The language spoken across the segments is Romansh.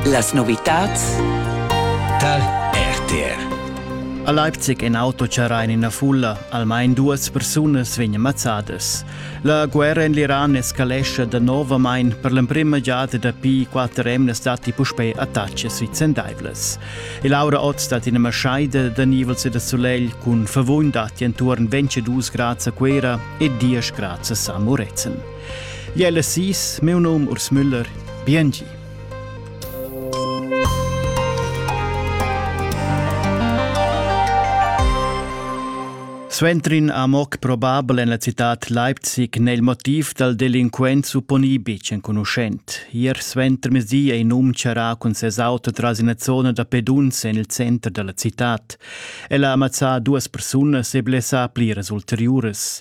Las novitads tar RTR. A Leipzig in auto charra in ina fulla. Almain duas persunas vegnan mazzadas. La guerra en l'Iran escalescha danovamain per l'emprima giada dapi quatter emnas datti puspè attacks vicendaivlas. E Laura Ott stat ina maschaida da nivels e da solegl cun favugn datti enturn 22 grads a Cuera e 10 grads a San Murezzan. Jella sis, meu num Urs Müller, biengi. Sventrin amoc probabel en la citat Leipzig nel motiv dal delinquent supponi bic enconuschent. Ier sventer mesi ei num charà cun ses auto tras ina zona da pedunze en il center della citat. Ella amazza duas persunas e blessa pliras ulteriuras.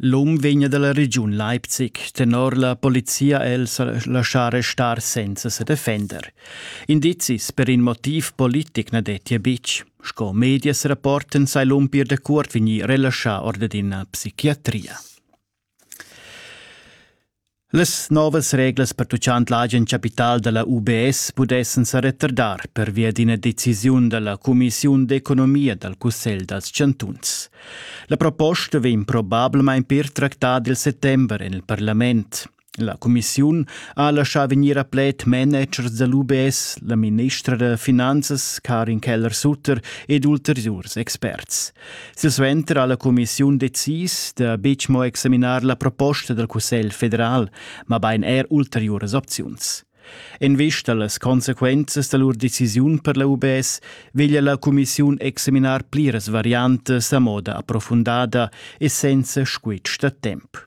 L'um vegna dalla regiun Leipzig tenor la polizia el sa laschar restar senza se defender. Indizis per in motiv politic na dettia betg. Sco medias rapporten sai l'um pir da cuort vegnir relaschà or d'ina psichiatria. Las novas reglas pertuchant l'agen capital da la UBS pudessan sa retardar pervia d'ina decisiun da la cumissiun d'economia dal Cussegl dals chantuns. La proposta vegn probablamain pir tractada il settember en il parlament. La cumissiun ha laschà vegnir a pled managers da l'UBS, la ministra da finanzas Karin Keller-Sutter ed ulteriurs experts. Silsuenter ha la cumissiun decis da betg mo examinar la proposta dal Cussegl federal, mabain er ulteriuras opziuns. En vista a las consequenzas da lur decisiun per la UBS veglia la cumissiun examinar pliras variantas a moda approfundada e senza squitsch da temp.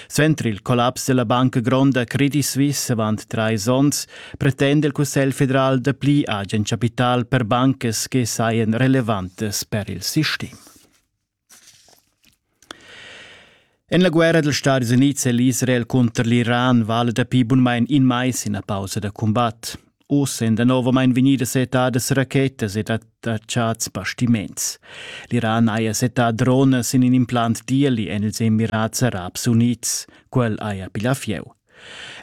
Suenter il collaps della Banca Gronda Credit Suisse avant trais onns pretenda il Cussegl federal dapli agen capital per bancas che saien relevantes per il sistem. En la guerra dels Stati Units è l'Israel conter l'Iran vale dapi bunmein in mais ina pausa da combat. Ossa èn danovamein vegnidas settadas rachetas ed attachats bastiments. L'Iran haja settà dronas in in implant d'ieli en ils Emirats Arabs Unids. Quel haja piglià fieu.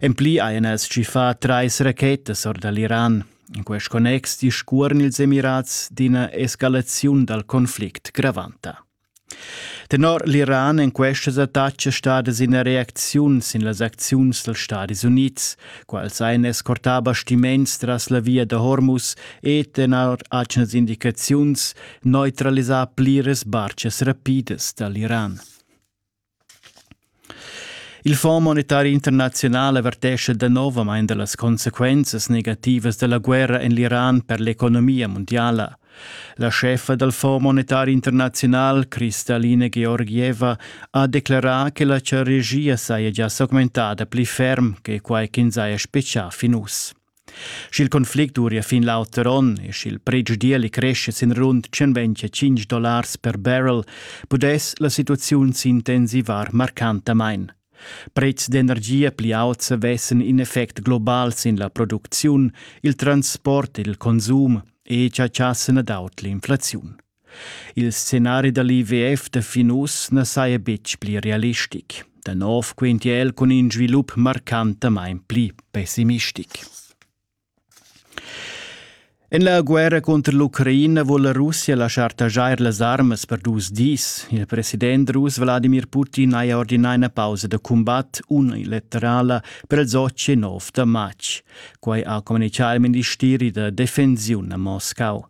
En pli hajan els tschiffà trais rachetas or da l'Iran. In quest connex discuorn ils Emirats d'ina escalaziun dal conflict gravanta. Tenor l'Iran èn questas attacas stadas ina reacziun sin las acziuns dals Stadis Unids. Quels ein escortà bastiments tras la via da Hormuz e, tenor atgnas indicaziuns, neutralisà pliras barchas rapidas da l'Iran. Il Fonds monetari internaziunal avertescha danovamain da las consequenzas negativas da la guerra en l'Iran per l'economia mundiala. La scheffa dal Fonds monetari internaziunal, Kristalina Georgieva, ha declerà che la regia saja gia s'augmentada pli ferm che quai ch'ins haja spetgà fin uss. Sch'il conflict duria fin l'auter onn e sch'il pretsch d'ieli cresce sin rund 125 dollars per barrel, pudess la situaziun s'intensivar marcantamain. Prezs d'energia pli auts avessen in effect global sin la producziun, il transport ed il consum e chatschassen ad aut l'inflaziun. Il scenari da l'IWF da fin uss na saja betg pli realistic. Da nov quintia el cun in svilup marcantamain pli pessimistic. En la guerra cunter l'Ucraina vul la Russia laschar taxar las armas per dus dis. Il president rus Wladimir Putin haja ordinà ina pausa da cumbat unilaterala per il 19 da matg. Quai ha communichà il ministeri da defensiun a Moscau.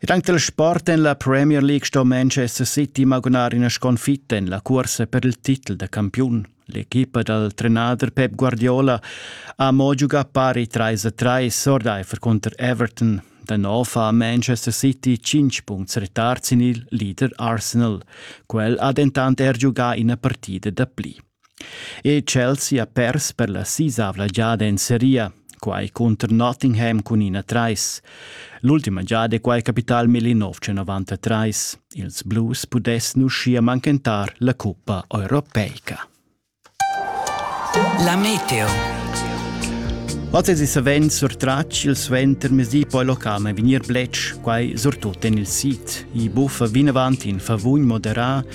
Ed anc dal sport en la Premier League sto Manchester City magunar ina sconfitta en la cursa per il titel da campiun. L'equipa dal trenader Pep Guardiola ha mo giugà pari trais a trais ordaifer cunter Everton. Da nov ha Manchester City cinc punts retard sin il leader Arsenal. Quel ha dentant er giugà ina partida da pli. E Chelsea ha pers per la sisavla giada en seria, quai cunter Nottingham cun ina trais. L'ultima giada è quai capità al 1993. Ils Blues pudessan uschia manchentar la cuppa europeica. La meteo. Oz savend surtratg il suentermezdi poi locam e vegnir bletsch, quai surtut en il sit. I buffa vinavant in favugn moderà